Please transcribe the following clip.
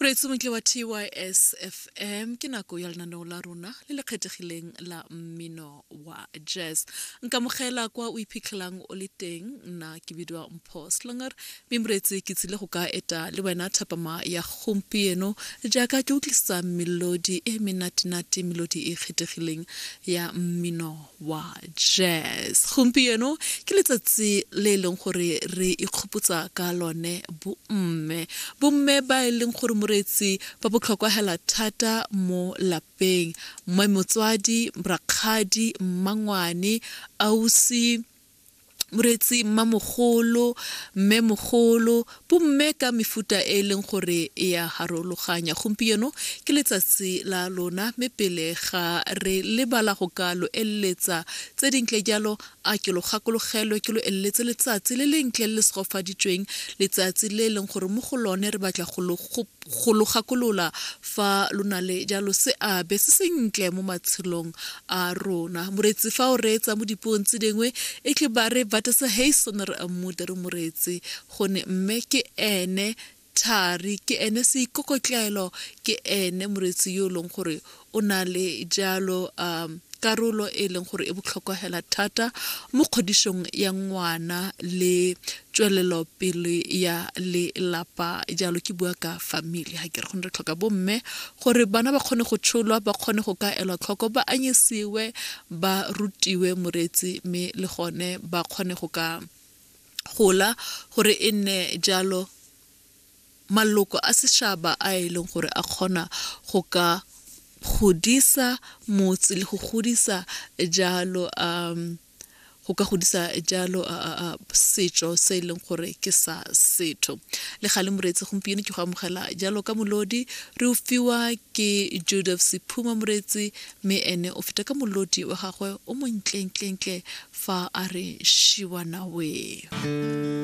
moreetsi montle wa tys fm ke nako ya lenaneo la rona le le kgethegileng la mmino wa jazz nkamogela kwa o iphitlhelang o le teng nna ke bidiwa mpho slonger mme moreetsi ke tsile go ka eta le wena thapama ya gompieno jaaka ke utlwisitsa melodi e menatenate melodi e kgethegileng ya mmino wa jazz gompieno ke letsatsi le e leng gore re ikgopotsa ka lone bomme bomme ba e leng gore moreetsi ba botlhokwa hela thata mo lapeng mmoe motswadi rakgadi mmangwane ausi moreetsi mmamogolo mmemogolo bomme ka mefuta e e leng gore e ya harologanya gompieno ke letsatsi la lona mme pele ga re lebala go ka lo eleletsa tse dintle jalo a ke lo gakologelwe ke lo eleletse letsatsi le lentle le le segofaditsweng letsatsi le e leng gore mo go lone re batla go lo go lo gakolola fa lo na le jalo seabe se sentle mo matshelong a rona moreetsi fa o reetsa mo dipuong tse dingwe e tle ba re batesa hason re ammuta re moreetsi gone mme ke ene thari ke ene seikokotlelo ke ene moreetsi yo e leng gore o na le jalo um karolo e e leng gore e botlhokwa hela thata mo kgodišong ya ngwana le tswelelopele ya lelapa jalo ke bua ka family ga ke re gone re tlhoka bomme gore bana ba kgone go tsholwa ba kgone go ka elwa tlhoko ba anyisiwe ba rutiwe moreetsi mme le gone ba kgone go ka gola gore e nne jalo maloko a sešaba a e leng gore a kgona go ka godisa motse le go godisa jalo um go ka godisa jalo setšo se e leng gore ke sa setho le ga le moreetsi gompieno ke go amogela jalo ka molodi re o fiwa ke joseph sephuma moreetsi mme ene o feta ka molodi wa gagwe o montlentlentle fa a re shiwanawe